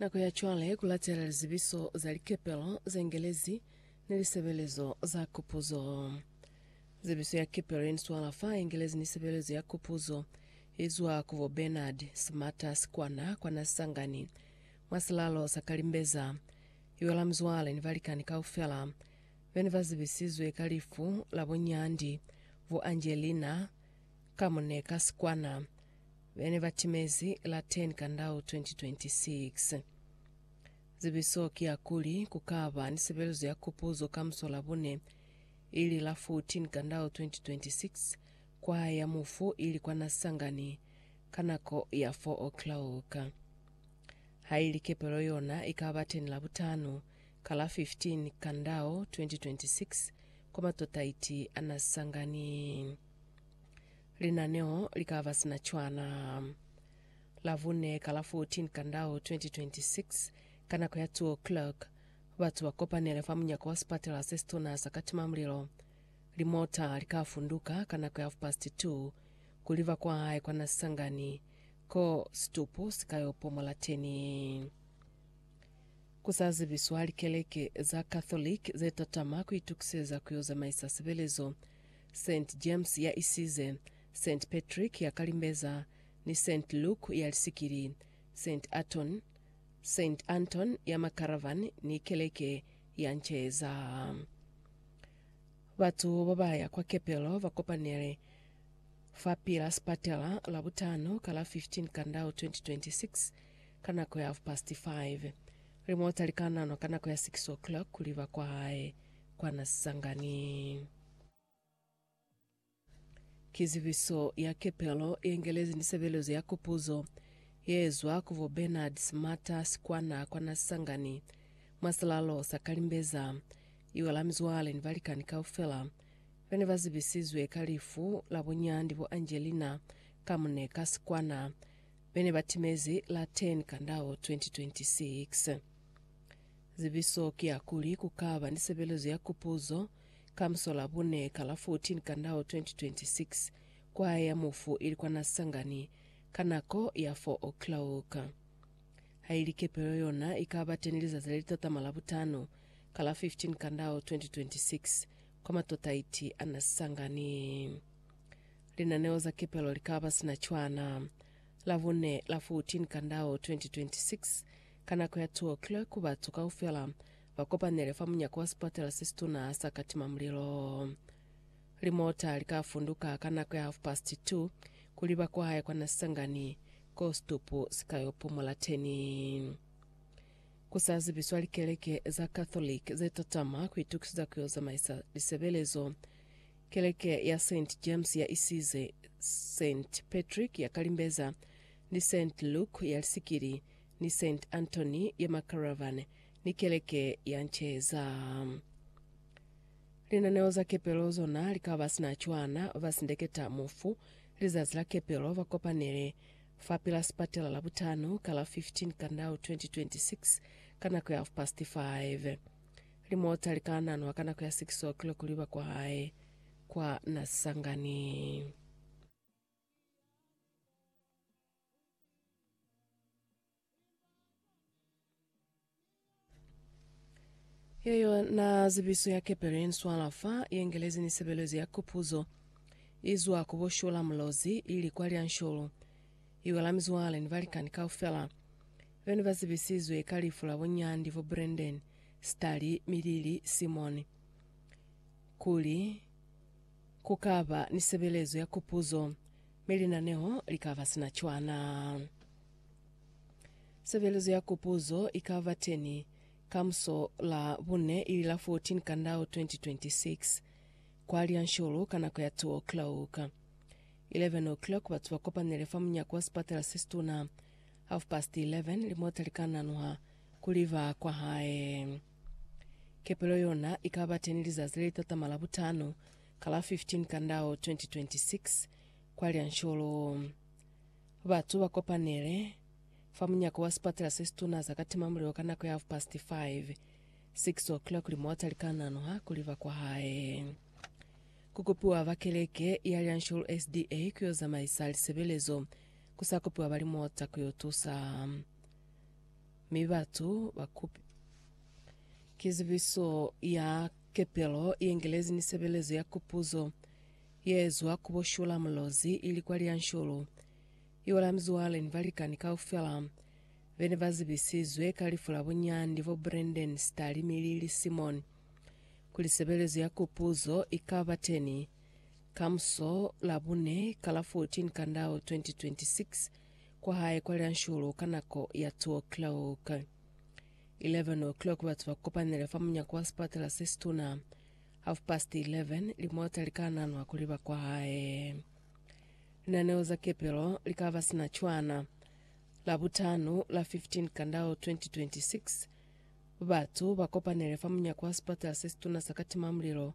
Nako ya cwale ku latela lizibiso za likepelo ze ngelezi ni lisebelezo za kupuzo. Zibiso ya kepelo ye ni swala fa ye ngelezi ni sebelezo ya kupuzo i zwa ku bo Bernard Smarter sikwana kwa Nasangani, mwa silalo sa Kalimbeza. I wela muzwale ni balikani kaufela be ne ba zibisizwe ka lifu la bo Nyandi, bo Angelina, Ka mune ka sikwana be ne ba timezi la 10 Kandau 2026. Zibiso ki ya kuli ku ka ba ni sebelezo ya kupuzo ka musolabune, ili la 14 Kandau 2026, kwaya ya mufu ili kwa Nasangani ka nako ya 4 o'clock. Ha ili kepelo yona i ka ba teni Labutano ka la 15 Kandau 2026 kwa matotaiti a Nasangani. Linaneo li ka ba sina cwana Labune ka la 14 Kandau 2026 ka nako ya 2:00. Batu ba kopanele fa munyako wa sipatela se situna sa Katimamulilo. Limota li ka funduka ka nako ya hafupasti 2 kuli ba kwahae kwa na sangani ko situpu si ka yo pomola teni. Ku sa zibiswa likeleke za Catholic ze tatama ku itukiseza ku yo zamaisa sebelezo. Saint James ya isize, Saint Patrick ya kalimbeza, ni Saint Luke ya lisikili, Saint Aton, Saint Anton ya makaravan, ni keleke ya nceza. Batu bo ba ya kwa kepelo ba kopanele fa pila sipatela Labutano ka la 15 Kandau 2026 ka nako ya half past five. Limota li ka nanwa ka nako ya 6 o'clock kuli ba kwahae kwa Nasisangani. Ki zibiso ya kepelo ye ngelezi ni sebelezo ya kupuzo ye zwa ku bo Bernard Smata sikwana kwa Nasangani mwa silalo sa Kalimbeza. Iwe la mizwale ni balikani kaufela ba ne ba zibisizwe ka lifu la bunyandi bo Angelina ka mune ka sikwana be ne ba timezi la 10 Kandao 2026. Zibiso ki ya kuli ku ka ba ni sebelezo ya kupuzo Ka muso la bune ka la 14 Kandao 2026, kwaya ya mufu ili kwana Sangani ka nako ya 4 o'clock. Haili kepelo yona ikaba teni lizazi le litatama la butano ka la 15 Kandao 2026 kwa Matotaiti a na Sangani. Linaneo za kepelo likaba sina cwana. La bune la 14 Kandao 2026 ka nako ya 2 o'clock batu kaufela ba kopanele fa munyako wa sipatela se situna sa ka tima mulilo. Limota li ka funduka ka nako ya half past two kuli ba kwahe kwa na Sangani ko situpu si ka yo pumula teni. Ku sa zibiswa likeleke za Catholic ze tatama ku itukiseza ku yo zamaisa lisebelezo, keleke ya Saint James ya isize Saint Patrick ya Kalimbeza ni Saint Luke ya Lisikili ni Saint Anthony ya Makaravan ni keleke ya nceza. Linaneo za kepelo zona li ka ba sina cwana, ba sindeketa mufu lizazi la kepelo ba kopanele fapil'a sipatela Labutano ka la 15 Kandau 2026 ka nako ya half past 5. Limota li ka nanwa ka nako ya 6:00 liba kwahae kwa Nasangani. Ye yona zibiso ya kepelo ye nswala fa Yengelezi ni sebelezo ya kupuzo izwa ku bo Shula Mulozi ili kwa Lyanshulu, iwa la mizwale ni balikani kaufela bene ba zibisizwe ka lifu la bo Nyandi fo Brendeni, Sitali, Milili, Simoni. Kuli ku ka ba ni sebelezo ya kupuzo, mi linaneho li ka ba sina cwana. Sebelezo ya Kupuzo i ka ba teñi ka muso la bune ili la 14 Kandao 2026, kwa Lianshulu ka nako ya 2 o'clock. 11 o'clock batu ba kopanele fa munyako wa sipatala se situna. Half past 11 limota li ka nanuha ku li ba kwa hae. Kepelo yona i ka ba teñi lizazi le li tatama la butano ka la 15 Kandao 2026, kwa Lianshulu. Batu ba kopanele fa munyako wa sipatela se situna za ka tima mulilo ka nako ya half past five, six o'clock, li mota li ka nanuha kuli ba kwa hae. Ku kopiwa ba keleke ya Lianshulu SDA ku yo zamaisa lisebelezo, ku sa kopiwa ba limota ku yo tusa. Mi batu ba kupi. Ki zibiso ya kepelo ye ngelezi ni sebelezo ya kupuzo. Yezwa ku bo Shula Mulozi ili kwa Lyanshulu, iwala mizwale ni balikani kaufela bene ba zibisizwe ka lifu la bunyandi bo Brendon Stali mi Lily Simon kuli sebelezo ya kupuzo ikaba teni kamuso Labune ka la 14 Kandao 2026 kwa hae kwa Lyanshulu ka nako ya 2 o'clock. 11 o'clock batu ba kopanile fa munyako wa sipatela sesituna Half past eleven, limota li ka nanwa kuli ba kwa hae. Linaneo za kepelo li ka ba sina cwana. Labutano, la 15 Kandao 2026, batu ba kopanele fa munyako wa sipatala se situna sa Katimamulilo,